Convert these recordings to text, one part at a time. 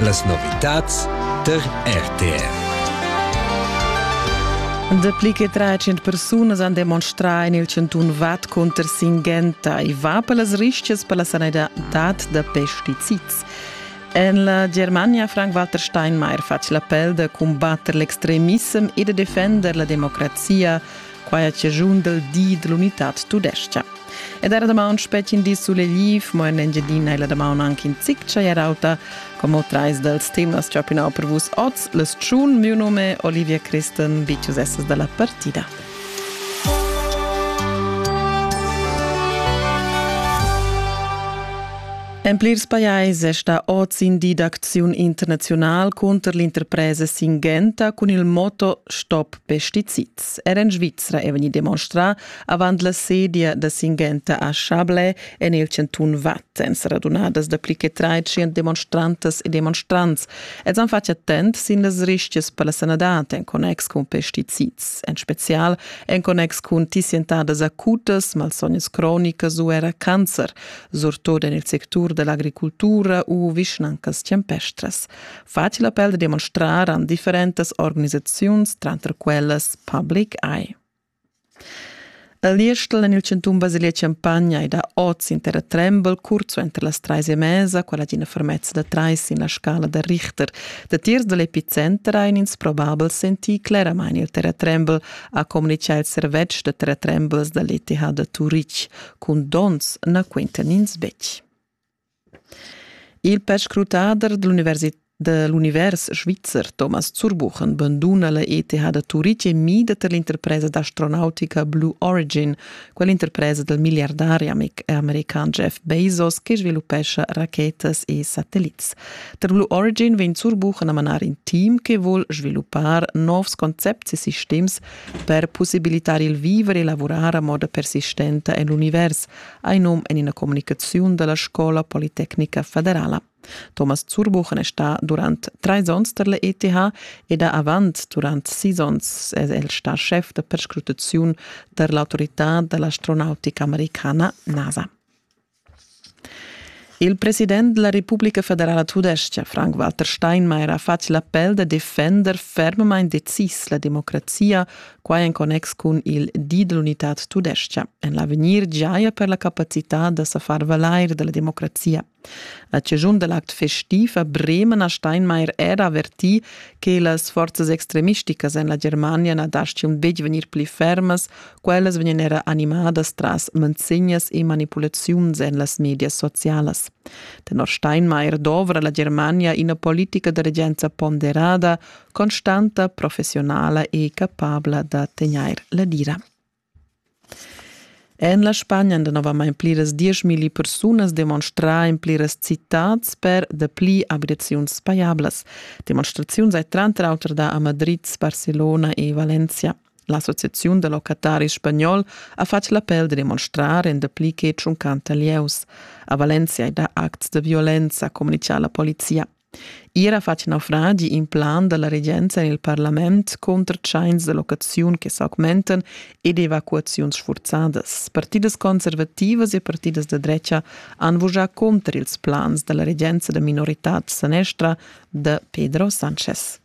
Las novitads tar RTR. Dapli che 300 persunas han demonstrà en il chantun Vad cunter Singenta. I va per las rischias per la sanitad da pesticids. En la Germania Frank-Walter Steinmeier fatg l'appel da cumbatter l'extremissem e da defender la democrazia Quai è chaschun dal di dell'unitad tudescha. Ed era damaun spetg in di sulegliv, mo en Engiadina è la damaun anche in zic auta, come trais dals temas chapinau per vus oz, le Tschun, mio nome Olivia Christen, Bicius esses dalla partida. En plirs pajais è sta oz in di d'acziun internazional contro l'interpresa Singenta con il motto Stop Pestizid. Sviz. Er en Svizra è vegnì demonstrà avant la sedia da Singhenta a Chablais en il chantun Watt. Èn sa radunadas dapli che tratschient demonstrantas e demonstrants. Els han fatg attent sin las rischias per la sanadad en connex cun pesticids, en spezial en connex cun tissientadas acutas, malsognas cronicas u era cancer, surtut en il sectur dell'agricultura u vischnancas champestras. facil appel da demonstrar an differentas organisaziuns, tranter quellas Public Eye. A Liestel en il centum Basilia Champagna è da oz inter trembel curzo entre las trais e mesa, quella d'ina fermezza da trais in la scala da Richter. Da tiers da l'epicenter ein ins probabel sentì claramain il terratrembel, ha communicà il servetsch da terratrembels da l'ETH da Turitg. Cun donns na quintan ins betg. Il perscrutader da l'univers svizzer Thomas Zurbuchen banduna la ETH da Turitg e mida tar l'interpresa d'astronautica Blue Origin, quell'interpresa dal milliardari american Jeff Bezos che sviluppescha rachetas e satellits. Tar Blue Origin vegn Zurbuchen a manar in team che vuol sviluppar novs concepts e sistems per pussibilitar il vivere e lavurar a moda persistenta en l'univers, ha in num en ina communicaziun dalla Scola Politecnica Federala. Thomas Zurbuchen è sta durant trais onns per l'ETH ed ha avant durant sis onns è el sta chef da perscrutaziun per l'autorità dell'astronautica americana NASA. Il president della Repubblica Federala Tudescha, Frank-Walter Steinmeier, ha fatg l'appel da defender fermamain decis la democrazia, quai en connex cun il di dell'unità tudescha. En l'avegnir giaja per la capacità da sa far valair della democrazia. A cigiun dell'act festiv a Bremen ha Steinmeier era avertì che las forzas extremisticas en la Germania na dastgian betg vegnir pli fermas Quellas vegnan era animadas tras manzegnas e manipulaziuns en las medias socialas. Tenor Steinmeier dovra la Germania ina politica da regenza ponderada, constanta, professionala e capabla da tegnair la dira. En la Spagna han danovamain pliras dieschmilli persunas demonstrà en pliras citats per dapli abitaziuns pajablas. Demonstraziuns hai tranter auter dà a Madrid, Barcelona e Valencia. L'Associaziun da locataris spagnol ha fatg l'appel da demonstrar en dapli che tschuncanta lieus. A Valencia è da acts da violenza, communica la polizia. Ier ha fatg naufragi in plan da la regenza en il parlament contro tschains da locaziun che s'augmentan ed evacuaziuns sfurzadas. Partidas conservativas e partidas da drecha han vusà contro ils plans da la regenza da minoritad sanestra da Pedro Sanchez.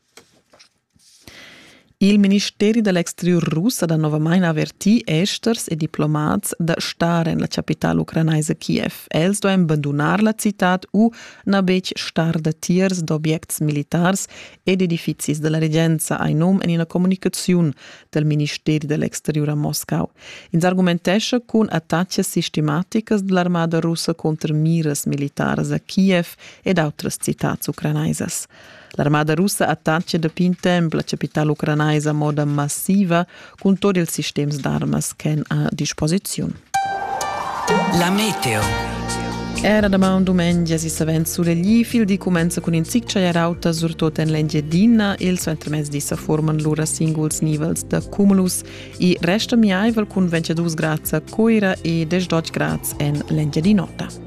Il ministeri da l'exteriur russ ha danovamain avertì esters e diplomats da star en la chapitala ucranaisa Kiev. Els duain bandunar la citad u na betg star datiers d'objects militars ed edifizis da la regenza, hai num en ina communicaziun dal ministeri da l'exteriur a Moscau. Ins argumentescha cun attacas sistematicas da l'armada russa conter miras militaras a Kiev ed autras citads ucranaisas. L'armada russa attacca dapi in temp la capitala ucranaisa a moda massiva cun tot ils sistems d'armas ch'èn a disposiziun. La meteo. Era damaun dumengia si savens sulegli, il di cumenza cun in zic chagliar auta, surtut en l'Engiadina. Il suentermezdi sa forman lura singuls nivels da cumulus e resta miaivel cun 22 grads a Coira e 18 grads en l'Engiadin'Ota.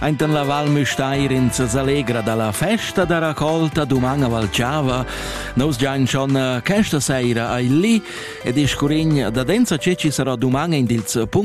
Ainten la Val Müstair in s'allegra dalla festa da raccolta duman a Valciava. Nous giain schon questa seira ai li ed iscurign da densa ce ci sarà duman in dils punct